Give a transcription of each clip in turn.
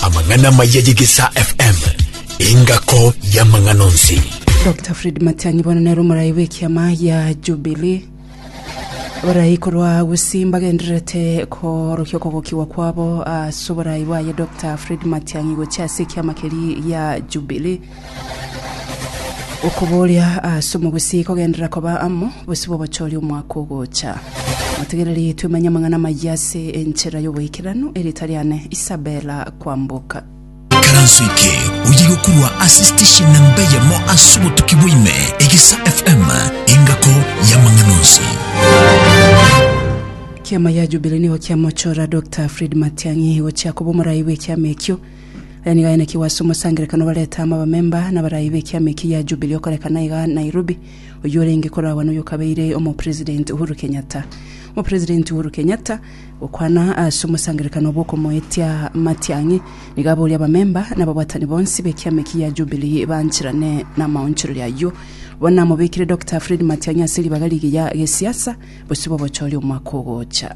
amang'ana amaya y'egesaa fm engako y'amang'ana onsi dr fred matianyi bono nere omorai bw'ekiama ya jubilee borai korwa gusii mbagendererete korokia okogokigwa kwabo ase oborai bwaye dr fred matianyi gochia ase ekiama keria gia jubilee Okobooria ase omobisi kogenderera koba amo bosio bw'obochori omwaka ogocha. Motegereri twemenye amang'ana amayia ase enchera y'oboikeranu, erieta riane Isabella Kwamboka. Karanso eke oye gokurwa ase station namba eyemo ase obotuki bwaime egesa FM engako yamang'ana onsi. Kiama ya Jubilee nigo kiamochora Dokta Fred Matiang'i gochia koba omorai bw'ekiama ekio. Aya nigo ayanekigwe ase omosangerekano obarete amo abamemba na abaraai b'ekiama eki gia Jubilee okorekana iga Nairobi, oyio orenge koragwa noyo okabeire Omopresident Uhuru Kenyatta. Omopresident Uhuru Kenyatta gokwana ase omosangerekano obwo okomoetia Matiang'i nigo aborie abamemba na ababwatani bonsi b'ekiama eki gia Jubilee bancherane namaonchoreria ayio. Bono namobekire Dokita Fred Matiang'i ase ribaga rigiya gesiasa bosio bobochori omwaka ogocha.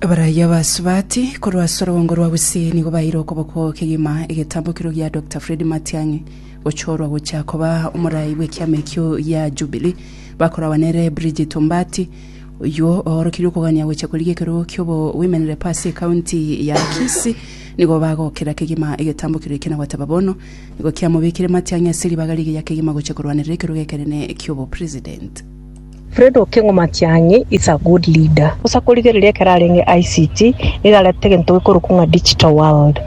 Abaraiyo ba Subati korwa ase orogongo rwa Gusii nigo baeire okoboko kegima egetambokero gia Doctor Fred Matiang'i gochorwa gochia koba omorai bw'ekiama ekio gia Jubilee bakoragwa nere Bridget Ombati oyio oorokirie okogania gochia korigia ekerogo kiobo women rep ase ekaunti ya Kisii nigo bagokera kegima egetambokero ekio na goteba bono nigo kiamobekire Matiang'i ase ribaga rigiya kegima gochia korwanerera ekerogo ekenene kiobo president Fred Okengo Matiang'i is a good leader. Gose akorigereria ekero arenge ICT nigo arete egento gekorokwa ng'a digital world.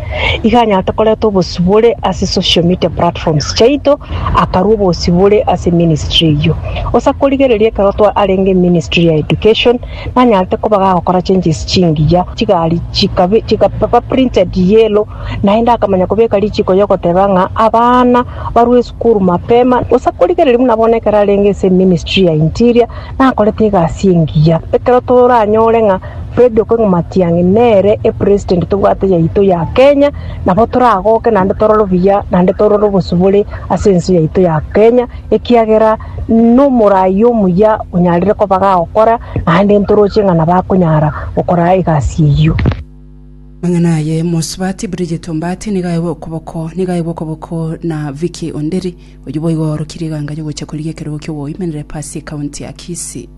Iga anyarete koreta obosibore ase social media platforms chiaito, akarua obosibore ase ministry eyio. Gose akorigereria ekero twa arenge ministry ya education, nanyarete koba iga agokora changes chingiya, chigari chikabe chikaba printed yellow, naende akamanya kobeka richiko yogoteba ng'a abana. barue esukuru mapema, gose akorigereria buna bono ekero arenge ase eministry ya interior, nakorete egasi engiya. Ekero toranyore ng'a Fred Okengo Matiang'i nere epresident tobwate yaito ya Kenya, nabo toragoke naende torore obuya, naende torore obosio bore ase ense yaito ya Kenya, ekiagera nomorai omuya onyarire koba gagokora, naende ntoroche ng'a nabo akonyara gokora egasi eyio. Amang'ana aye, Mosubati Bridget Ombaati nigo aegwe okoboko, nigo aegwe okoboko na Vicky Onderi, oyio boigo oorokirie eganga y'ogocha korigia ekerogo ki'ogoimanera epasi ekaunti ya Kisii.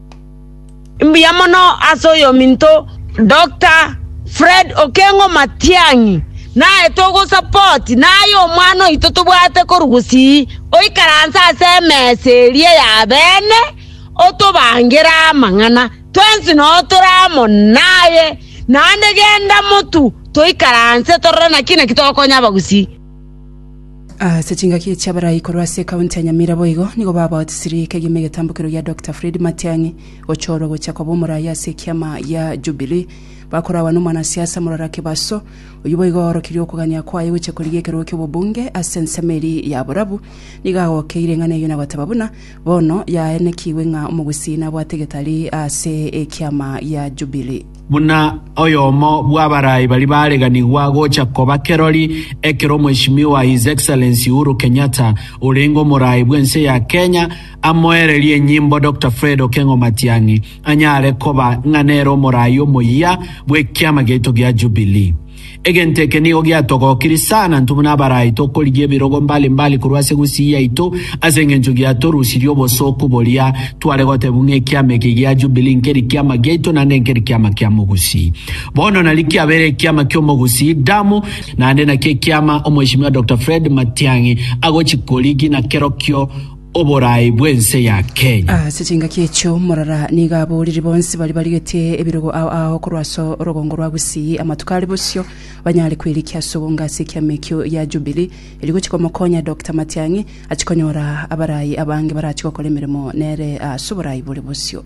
Mbuya mono ase oyominto Doctor Fred Okengo Matiang'i, naye togosupport naye omwana oito tobwate koru gusii oikaranse ase emesa eria ya bene otobangere amang'ana. Twensi nao tore amo naye, naende genda motu toikaranse torore naki naki togokonya abagusii. Ase chingaki chi'abarai korwa ase ekaunti ya Nyamira boigo nigo babaotisiri ekegima egetambokero gia Dokita Fred Matiang'i gochorwa gochia koba omoraia ase ekiama gia Jubilee bakorawa n'omwanasiasa Murara Kibaso oyio boigo oorokirie okogania kwaye gochia korigia ekerogo ki'obobunge ase ensemo eria ya borabu nigo agokeire eng'ana eyio na goteba buna Bono yaenekigwe ng'a omogusii nabwate getari ase ekiama gia Jubilii. Buna oyomo bw'abaraai baria bareganigwa gocha koba kerori ekero Mweshimiwa His Excellency Uhuru Kenyatta orenge omoraai bw'ense ya Kenya amoererie enyimbo Doctor Fred Okengo Matiang'i anyare koba ng'a nere omoraai omoyia bw'ekiama giaito gia Jubilee. Egento eke nigo giatogokirie sana intwe buna abarai tokorigia ebirogo mbali mbali korwa ase egusii yaito, ase engencho giatorusirie obosooku boria tware gotebwa ng'a ekiama eke gia Jubilee nkeri kiama giaito naende nkeri kiama kia mogusii. Bono nari kiabeire ekiama ki'omogusii, Damu, naende nakio ekiama Omweshimiwa Doctor Fred Matiang'i agochia korigi na kerokio, oboraai bw'ense ya Kenya. Ase chingaki echio morara nigo aboriri bonsi baria barigetie ebirogo ao ao korwa ase orogongo rwa Gusii amatuko are bosio banyare kwerikia ase ogonga ase ekiama ekio gia Jubilee erio gochia komokonya Doctor Matiang'i achie konyora abaraai abange barachi gokora emeremo nere ase oboraai bore bosio.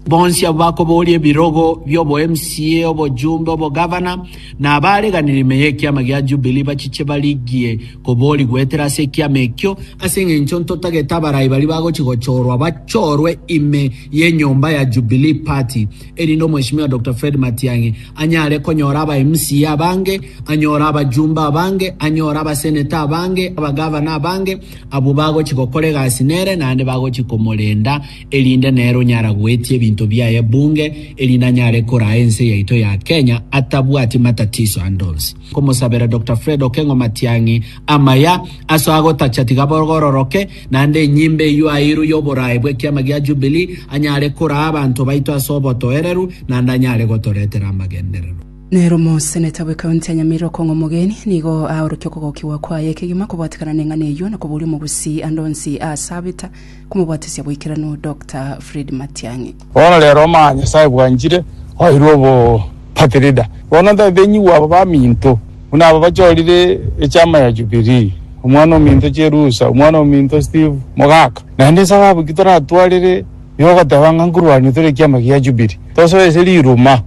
Bonsi abwo bakobooria ebirogo bi'oboMCA, obojumbe, obogavana, na abaareganire ime y'ekiama gia Jubilee bachiche barigie koboorigwa goetera ase ekiama ekio, ase engencho ntotagete abarai baria bagochia gochorwa bachorwe ime y'enyomba ya Jubilee Party, erinde Omweshimiwa Doctor Fred Matiang'i anyare konyora abaMCA abange, anyore abajumbe abange, anyore abaseneta abange, abagavana abange, abwo bagochia gokora egasi nere naende bagochia komorenda. erinde nero nyaragoetie ebinto biaye bunge erinde anyare koraa ense yaito ya Kenya atabwati matatiso ande onsi. Komosabera Doctor Fred Okengo Matiang'i amaya aso agotacha tiga borororoke naende enyimba eyio airu y'oboraai bw'ekiama gia Jubilee anyare koraa abanto baito ase obotoereru naende anyare gotoretera amagenderero. Nero omoseneta bwe county ya Nyamira Okong'o Omogeni nigo aorokia okogokigwa kwaye ekegima kobwatekana neng'ana eyio na koboria omogusii ande onsi aasabeta Komobatisia boikeranu Doctor Fred Matiang'i. Bono rero omanye Nyasae bwanchire oirwe obo party leader bono ntatenyigwe aba baminto buna aba bachorire echama ya jubilee omwana ominto cherusa omwana ominto Steve mogaka naende esababu ki toratwarire yogoteba ng'a nkorwania tore ekiama gia jubilee tosoe ase riruma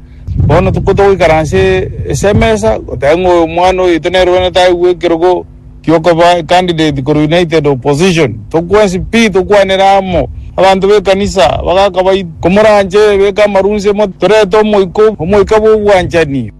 bono togoikaranse ase emesa goteba ng'a oyo omwana oito nere bono taigwe ekerogo. kiokoba ecandidate korwa United Opposition, tokwensi pi tokwanere amo. Abanto b'ekanisa bagakabaita, Komoranche beka amarunse mo torete omoika, omoika bw'obwanchani.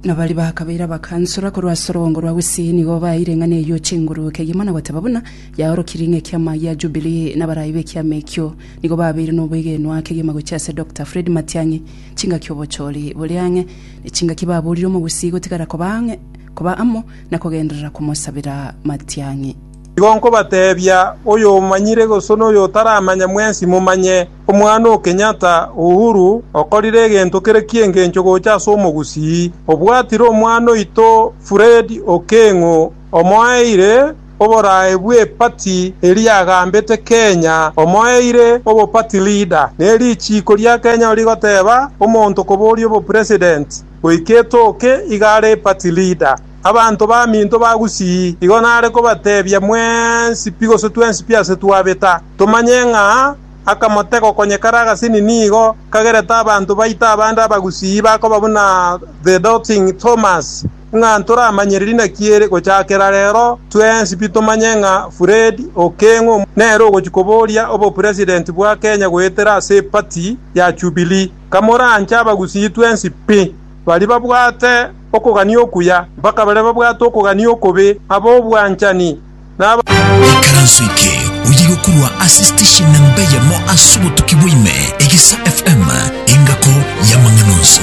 Na baria bakabeire abakansora korwa ase orogongo rwa Gusii nigo baeire eng'ana eyio chinguru kegima na goteba buna yaorokirie ng'a ekiama gia Jubilee na abarai b'ekiama ekio nigo babeire noboigenwa kegima gochia ase Doctor Fred Matiang'i chingaki obochori bore ang'e ne chingaki baborire Omogusii gotigara koba ang'e koba amo na kogenderera komosabera matiang'i. Igo nkobateebia, oyomanyire gose noyotaramanya mwensi momanye, omwana o Kenyatta, Uhuru, okorire egento kere ki'engencho gocha ase omogusii, obwatire omwana oito Fred Okeng'o, omoeire oborae bw'epati eria agambete Kenya, omoeire obo party leader, ne richiiko ria Kenya rigoteeba omonto koboria obopresident. goika etooke igare Pati Lida. Abanto baminto bagusii, igo nare kobatebia, Mwensi pi gose twensi pi ase twabeta, tomanye ng'a akamotego konye kare agasini nigo kagerete abanto baito abande abagusii bakoba buna the doubting Thomas, ng'a ntoramanyire inaki ere gochakera rero twensi pi tomanye ng'a Fred Okeng'o nere ogochi koboria obopresident bwa Kenya goetera ase epati ya Jubilee. Kamoranche abagusii twensi pi, baria babwate okogania okuya mpaka baria babwate okogania okobe, ab'obwanchani, na. Ekaranso eke oyiyi gokorwa ase station namba eyemo ase obotuki bwa ime, Egesa FM, engako y'amang'ana onsi.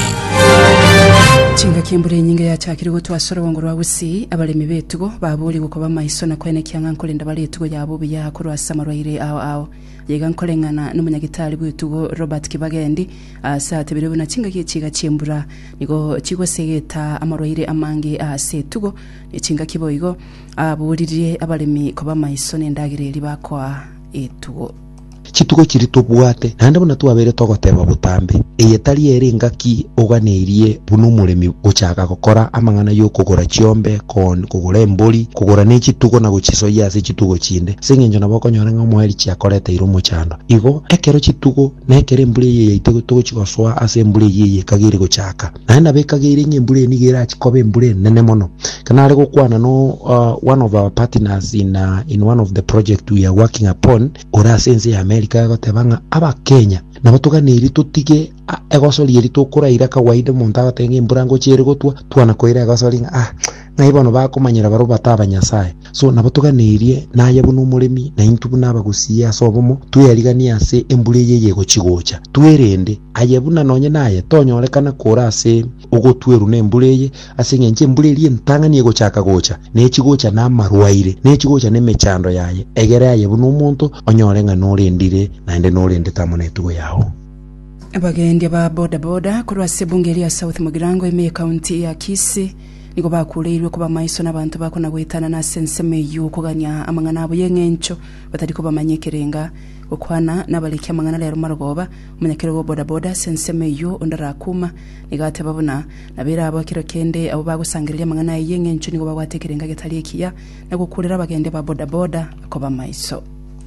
Chingaki embura enyinge yachakire gotwa ase orobongo rwa Gusii, abaremi b'etugo baboorigwe koba maiso na koenekia ng'a nkorenda bare etugo yabo buya korwa ase amarwaire ao ao. Iga nkoreng'ana n'omonyagitari bw'etugo Robert Kibagendi aase atebire buna chingaki echiga chi'embura nigo chigosegeta amarwaire amange aase etugo ne chingaki boigo, aboririe abaremi koba amaiso n'endagera eria bakoa etugo. Chitugo chiria tobwate naende buna twabeire togoteba botambe, eye tari ere engaki oganeirie buna omoremi gochaka gokora amang'ana y'okogora chiombe, koon, kogora embori, kogora ne chitugo na gochisoyia ase chitugo chinde, ase engencho nabo okonyora ng'a omoeri chiakoreteire omochando. Igo, ekero chitugo, na ekero embura eyio yaitwe togochia gosoa ase embura eyio eyio ekageire gochaaka, naende nabo ekageire ng'a embura eye nigo erachie koba embura enene mono. Ekero nare gokwana no one of our partners in in one of the project we are working upon, ore ase ense ya America, agoteba ng'a Abakenya nabo toganeirie totige, Ah, egosori eri tokoraira kawaida omonto agoteba ng'a embura ngochia ere gotwa, twana koira egosori ng'a ah, ng'ai bono bakomanyera barobwo bata abanyasae. So nabo toganerie naye buna omoremi na intwe buna abagusii ase obomo tweyariganie ase embura eye eyegochi gocha. Twerende, aye buna nonye naye tonyorekana kore ase ogotwerwa nembura eye, ase eng'encho embura eria entang'ani egochaka gocha, nechigocha namarwaire, nechigocha nemechando yaye, egere aye buna omonto onyore ng'a norendire naende norendete amo netugo yao. Abagendia ba boda boda korwa ase ebunge eria South Mugirango ime ekaunti ya Kisii nigo bakureirwe koba maiso nabanto bakona goetanana ase ensemo eyio kogania amang'ana abo y'eng'encho batari kobamanya ekerenga. Gokwana nabareki amang'ana rero Marogoba, omonyakerogo o boda boda ase ensemo eyio onde arakuma, nigo ateba buna nabere abo ekero kende abo bagosangereria amang'ana aye y'eng'encho nigo babwate ekerenga getari ekiya na gokurera abagendia ba boda boda koba maiso.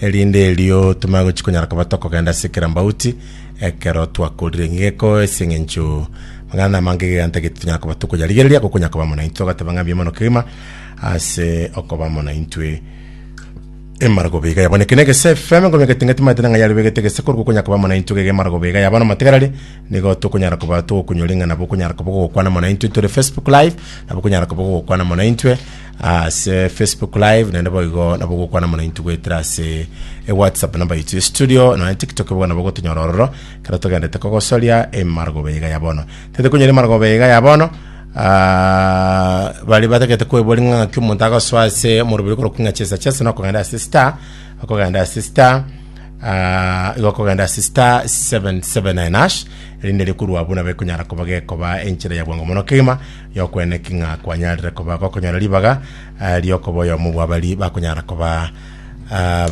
Erinde erio tomanye gochia konyara koba tokogenda ase kera mbauti ekero twakorire. Nigo eko ase eng'encho mang'ana na amange gegantagete tonyara koba tokoyarigereria gokonyara koba amo naintwe. Agateba ng'a mbiya mono kegima ase okoba amo naintwe. Emaragoba iga yabo neke negese FM ngoma egatenga timaete nang'a yare begete gese korwa gokonyara koba amo naintwe gega emaragoba iga yabo namatigarari nigo tokonyara koba togokunyora ing'a nabo okonyara koba ogokwana amo naintwe tore Facebook live nabo okonyara koba ogokwana amo naintwe. ase facebook live naende boigo nabo gokwana mono intwe goetera ase e whatsapp namba yaitu ya studio nonya tiktok bono nabo gotonyora ororo kero togendete kogosoria emarogobe iga ya bono tete konyora emarogobe iga ya bono ah, bari batagete kwebori ng'a ng'aki omonto agasoa ase omoroberi korokwa ng'a chesa chesa nokogenda ase star okogenda ase star ah, igo okogenda ase star 779 hash erinde rikorwa buna bekonyara koba gekoba enchera ya bwango mono kegima Y'okweneki ng'a kwanyarire koba gokonyora ribaga riokoba oyomo bw'abaria bakonyara koba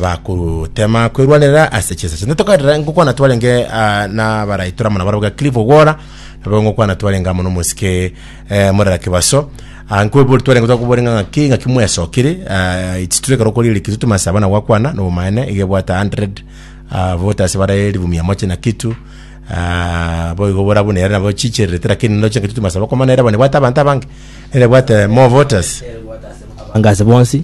bagotema kwerwanerera ase chinsa chinde. Tokarera ngokwana twarenge nabarai tore amo nabarabwo ga Cliff Ogwora, nabo ngokwana twarenge amo nomosike Murera Kibaso, nkoebori twarenge tokobori ng'a ng'aki ng'aki mwesokire chituo ekero okorire kituo tomansa abana gwakwana nobomaene iga ebwate 100 voters bare elfu mia moja na kitu Aa, boigo borabune ere nabo chichererete, lakini ndoche engaki totimasaba, kwa maana ere abonye bwate abanto abange, ere bwate more voters. Anga ase bonsi,